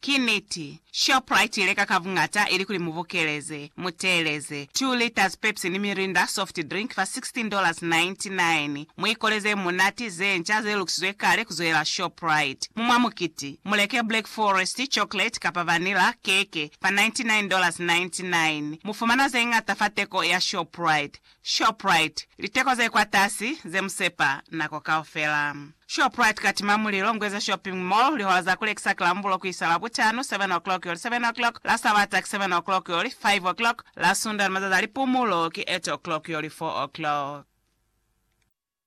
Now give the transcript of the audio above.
Ki niti, Shoprite i leka ka buñata ilikuli mu bukeleze, mu teeleze, 2 liters Pepsi ni Mirinda soft drink fa $16.99. Mu ikole ze munati, ze nca, ze lukisizwe kale ku zwelela Shoprite. Mu mwa mukiti, mu leke Black Forest, chocolate, kapa vanilla, keke, fa $99.99. Mu fumana ze ñata fa teko ya Shoprite. Shoprite, Liteko ze kwatasi ze mu sepa nako kaufela. Shoprite katima mulilo Ngweza Shopping Mall lihola za kulekisa ki Lambulo kuisa Labutano, 7 o'clock yoli 7 o'clock, la Sabata ki 7 o'clock yoli 5 o'clock, la Sunda ni mazazi a lipumulo ki 8 o'clock yoli 4 o'clock.